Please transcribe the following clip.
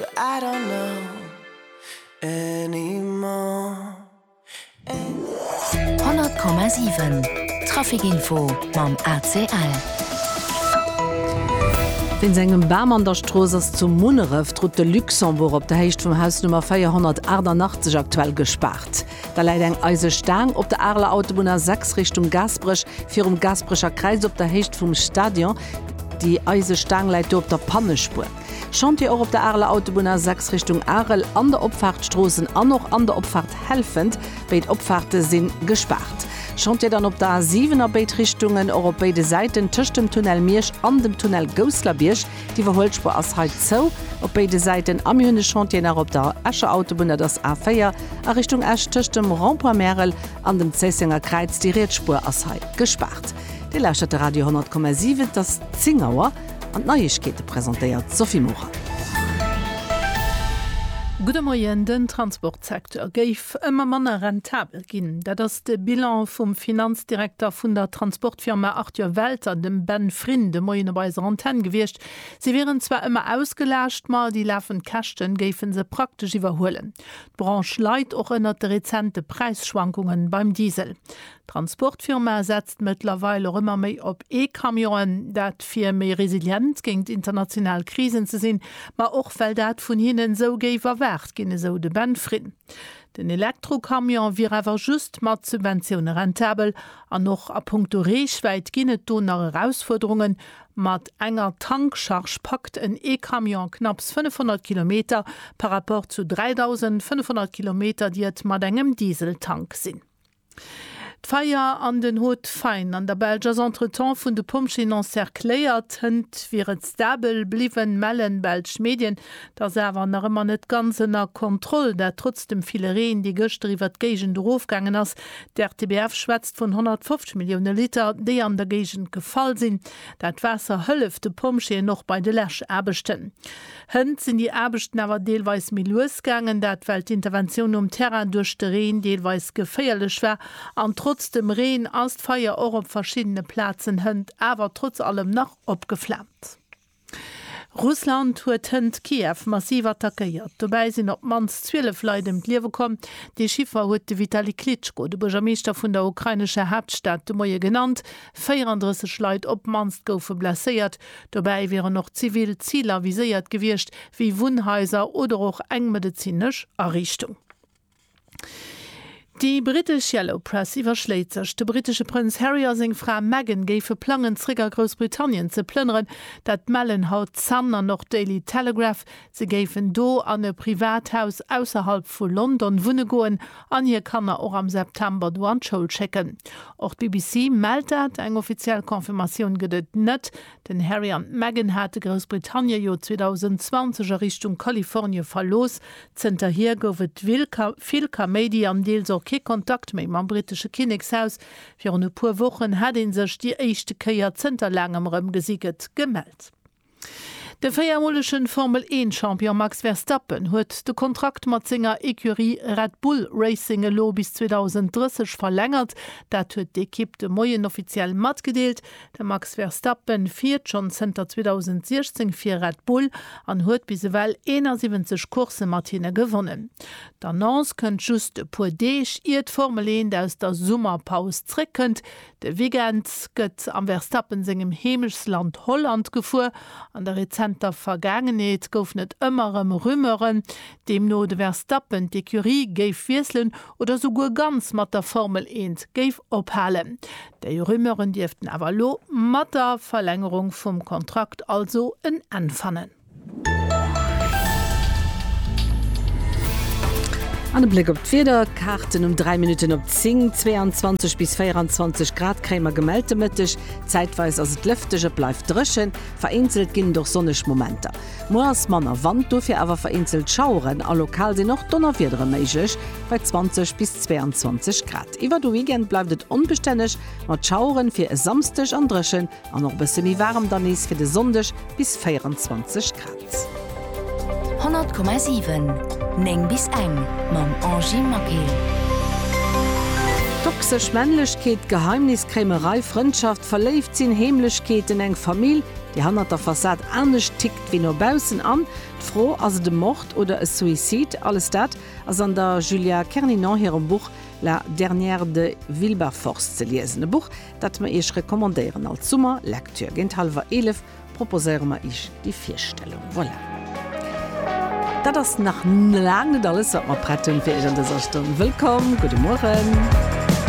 100,7 Traficinfo mam ACL. Wéinst engem Bam an der Strooss ass zu Munneref d'Route de Luxembourg op der Héicht vum Haus Nummer 488 aktuell gespaart. Da läit eng eise Staang op der Areler Autobunn A6 Richtung Gaasperech, virum Gaasperecher Kräiz op der Héicht vum Stadion. Déi eise Staang läit do op der Pannespuer. Chantier och op der Areler Autobunn A6 Richtung Arel, an der Opfaart Stroossen an och an der Opfaart Helfent. Béid Opfaarte si gespaart. Chantier dann op der A7 a béid Richtungen, och op béide Säiten tëscht dem Tunnel Miersch an dem Tunnel Gousslerbierg. D'Iwwerhuelspuer ass hei zou op béide Säiten. A mir hunn e Chantier nach op der Escher Autobunn, dat ass A4 a Richtung Esch tëscht dem Rond-point Märel an dem Zéissenger Kräiz. Déi riets Spuer ass hei gespaart. Dir lauschtert de Radio 100,7, et ass 10 Auer. An d'Neiegkeete presentéiert d'Sophie Morang. Gudde Moien, Den Transportsecteur géif ëmmer manner rentabel ginn. Dat ass de Bilan vum Finanzdirekter vun der Transportfirma Arthur Welter, dem Ben Frin, de Moien op eiser Antenn gewiescht. Si wieren zwar ëmmer ausgelaascht, ma déi lafend Käschten géife se praktesch iwwerhuelen. D'Branche leid och ënnert de rezente Präisschwankungen beim Diesel. D'Transportfirma setzt mëttlerweil och ëmmer méi op E-Camionen. Dat fir méi resilient géingt international Krisen ze sinn, ma och well dat vun hinnen esou géif erwaart ginn, esou de Ben Frin. Den Elektrocamion wier awer just mat Subventioune rentabel. An och a punkto Reechwäit ginn et do nach Erausfuerderungen. Mat enger Tankcharge packt en E-Camion knapps 500 Kilometer par Rapport zu 3.500 Kilometer, déi et mat engem Dieseltank sinn. D'Feier an den Hauts-de-Faine an der Belsch ass entretemps vun de Pompjeeën encercléiert. Hënt wier et stabel bliwwen, mellen belsch Medien. Et ass awer nach ëmmer net ganz ënner Kontroll, dat trotz dem ville Reen, dee gëschter iwwert d'Géigend erofgaangen ass. D'RTBF schwätzt vun 150 Millioune Liter, déi an der Géigend gefall sinn. Dat Waasser hëlleft de Pompjeeën och bei de Läschaarbechten. Hënt sinn déi Aarbechten awer deelweis méi lues gaangen, dat well d'Interventioun um Terrain duerch de Reen deelweis geféierlech war. An trotz dem Reen ass d'Feier och op verschiddene Plazen Hënt awer trotz allem nach opgeflaamt. Russland huet Hënt Kiew massiv attackéiert. Dobäi sinn op d'mannst 12 Leit ëm d'Liewe komm. Dee Chiffer huet de Vitali Klitschko, de Buergermeeschter vun der ukrainescher Haaptstad, de Moie genannt. 34 Leit op d'mannst goufe blesséiert, Dobäi wieren och zivil Ziler viséiert gewiescht, wéi Wunnhaiser oder och eng medezinesch Ariichtung. Déi brittesch Yellow Press iwwerschléit sech, de brittesche Prënz Harry a seng Fra Meghan géife plangen, zeréck a Groussbritannien ze plënneren. Dat mellen haut d'Sun an och d'Daily Telegraph, Se géifen do an e privat Haus ausserhalb vu London wunne goen an hir Kanner och am September do an d'Schoul schécken. Och d'BBC mellt dat. Eng offiziell Confirmatioun gëtt et net. Den Harry an d'Meghan hate Groussbritannien jo 2020 a Richtung Kalifornie verlooss. Zënterhier gouf et vill Kaméidi an deels och kee Kontakt méi mam brittesche Kinnekshaus. Virun e puer Wochen hat ee sech déi éischte Kéier zënter laangem erëm gesi gëtt gemellt. De véiermolegen Formel-Eent-Champion Max Verstappen huet de Kontrakt mat senger Ecurie Red Bull Racing elo bis 2030 verlängert. Dat huet d'Ekipp de Moien offiziell matgedeelt. De Max Verstappen fiert schonn zënter 2016 fir Red Bull an huet bis ewell 71 Coursse mat hinne gewonnen. D'Annonce kënnt just e puer Deeg, ier d'Formel Eent aus der Summerpaus zréckkënnt. De Weekend gëtt am Verstappen sengem Heemechtsland Holland gefuer. An der rezenter Vergaangenheet goufen et ëmmer erëm Rumeuren, deemno de Verstappen d'Ecurie géif wiesselen oder souguer ganz mat der Formel Eent géif ophalen. Déi Rumeuren dierften awer elo mat der Verlängerung vum Kontrakt also en Enn fannen. An e Bléck op d'Wieder, Kaarten um 3 Minutten op 10, 22 bis 24 Grad kréie mer gemellt de Mëtteg. Zäitweis ass et lëfteg, et bleift dréchen, vereenzelt ginn et och sonneg Momenter. Muer ass manner Wand, dofir awer vereenzelt Schaueren a lokal sinn och Donnerwiedere méiglech bei 20 bis 22 Grad. Iwwer de Weekend bleift et onbestänneg mat Schaueren, fir e Samsdeg an dréchen An och e bësse méi waarem dann nees fir de Sonndeg, bis 24 Grad. 100,7 9 bis eng mam Angie Maquet. Toxesch Männlechkeet, Geheimniskréimerei, Frëndschaft, verléift sinn, Heemlechkeeten, eng Famill, déi hannert der Fassad anescht tickt wéi no baussen an d'Fro, Ass et e Mord oder e Suicide? Alles dat ass an der Julia Kerninon hirem Buch La dernière de Wilberforce ze liesen. E Buch, dat mer Iech recommandéieren als Summer Lecture. Géint hallwer 11 proposéiere mer Iech déi Virstellung. Voilà. Dat ass nach laang net alles, wat mer prett hunn fir Iech an dëser Stonn. Wëllkomm, gudde Mueren.